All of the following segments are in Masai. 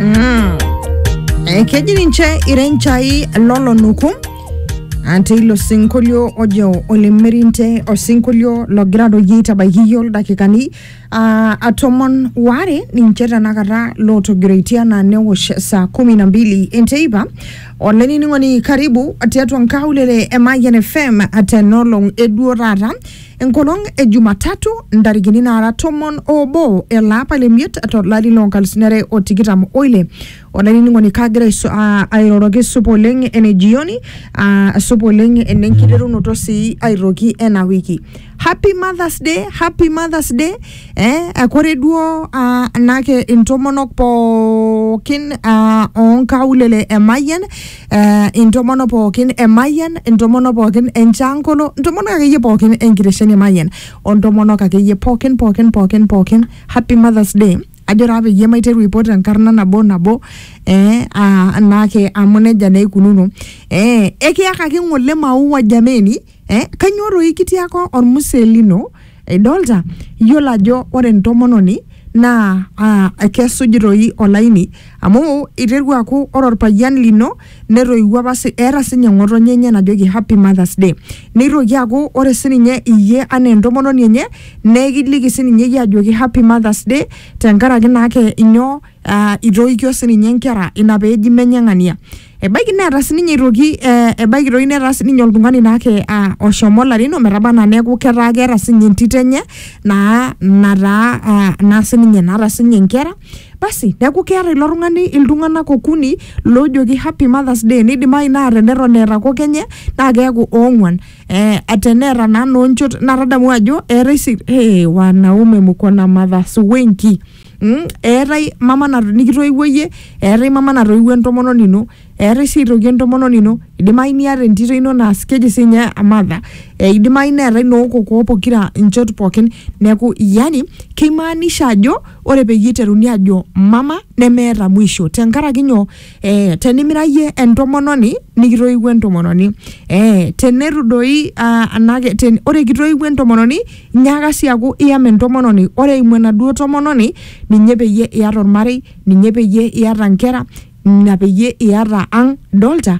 Mm. Eh, keji ninche irenchai lolonuku Ah, teilo sinkolio ojo olemerinte osinkolio logira doi aitabaiki iyio ildakikani ah, ah, tomon waare ninche tenakata lootogiroitie anaa newosh saa kumi na mbili enteipa olainining'oni karibu tiatua nkaulele e Mayian FM tenolong eduo taata Enkolong e Jumatatu ntarikini naara tomon oobo ele apa le miet to lari loo nkalusuni are o tikitam oile. Olainining'oni kagira aisu- aa- airoroki supa oleng ene jioni aa, supa oleng ene nkiterunoto sii aitoki ena wiki. Happy Mother's Day, Happy Mother's Day eh, eh, kore duo aa, anake intomonok pookin aa, oo nkaulele e Mayian eh, intomono pookin e Mayian, intomono pookin e Nchankolo, intomonok akeyie pookin enkitesheni e Mayian, ontomonok akeyie pookin pookin pookin pookin happy mothers day ajo taa peyie maiteru aipot enkarna nabo nabo eh, ah, naake amu nejia naa eikununo eh, ekiyakaki ng'ole maua jameni eh, kanyoo doi kitiaka ormusee lino idolta iyiolo ajo ore entomononi naa ah, kesuj doi olaini amu iterua aaku ore orpayian lino netoiwuo apa si, eeta sinye ng'otonye enye najoki happy mothers day neitoki aaku ore sininye iyie anaa entomononi enye nekiliki sininye iyie ajoki happy mothers day tenkaraki naake inyoo ah, itoikio sininye inkera ina peeji menye ng'ania Ebaiki neeta sininye aitoki eh, ebaiki doi netaa sininye oltung'ani naake ah, oshomo larin ometaba anaa neeku ketaa keeta sininye entito enye naa nataa ah, naa sininye naata sininye inkera basi neeku keeta ilo tung'ani iltung'anak okuni loojoki happy mothers day neidimayu naa teneton eeta kok enye naa keeku oong'uan eh, teneeta naa noonchot naa tadamu ajo eetae si hey, wanaume mko na mothers wengi Mm, eetae mama na- nikitoiwuo iyie eetae mama natoiwuo entomononi ino eetae sii aitoki entomononi ino idimayu niata entito ino naas keji sinye amadha e, idimayu neetae nookokoo pokira inchot pookin neeku yani keimaanisha ajo ore peyie iteruni ajo mama nemeeta mwisho tenkaraki nyoo Eh, tenimira iyie entomononi nikitoiwuo entomononi eh, tenetu doi ah, anake ten, ore kitoiwuo entomononi nyaaka sii aku iyam entomononi ore eimu enaduo tomononi ninye peyie iyata ormarei ninye peyie iyata nkera ina peyie iyata ang dolta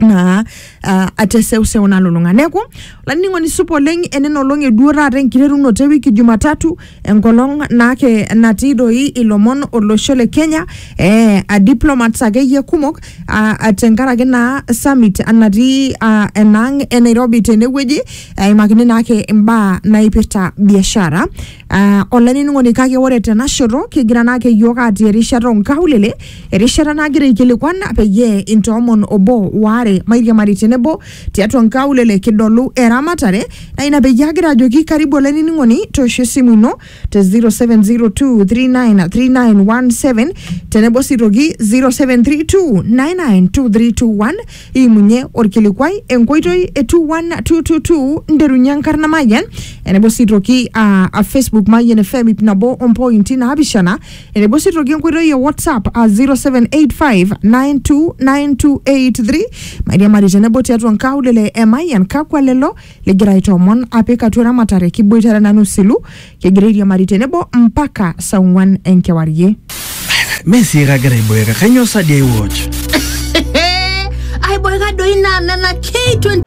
naa uh, ateseuseu nalulung'a neeku olainining'oni supa oleng enena olong eduo taata enkiterunoto ewiki jumatatu enkolong naake natii doi ilomon olosho le kenya eh, a diplomats akeyie kumok uh, tenkaraki naa summit natii uh, enaang e nairobi tenewueji eimakini naake imbaa naipirta biashara uh, olainining'oni kake ore tenashoto kigira naake yiok atii erishata onkaulele Erishata nagira aikilikuan peyie intoomon obo waare mairiamari tenebo tiatua nkaulele kidolu eramatare na ina peyie agira ajoki karibu olainining'oni toosho esimu ino te 0702393917 tenebo sii toki 0732992321 iimunye orkilikuai enkoitoi e 21222 nderunye enkarna Mayian enebo sii toki uh, Facebook Mayian FM ip nabo ompointi naapishana Enebo sii toki enkoitoi e WhatsApp a 0785929283 mairiamari tenebo tiatua nkaulele e Mayian kakwa lelo ligira aitoomon apik atua eramatare kiboitare nanu silu kigira airiamari tenebo mpaka saa ong'wan enkewarie. Mee sii kagira aiboeka, kainyoo sa dii ai watch? aiboeka doi naa nena K20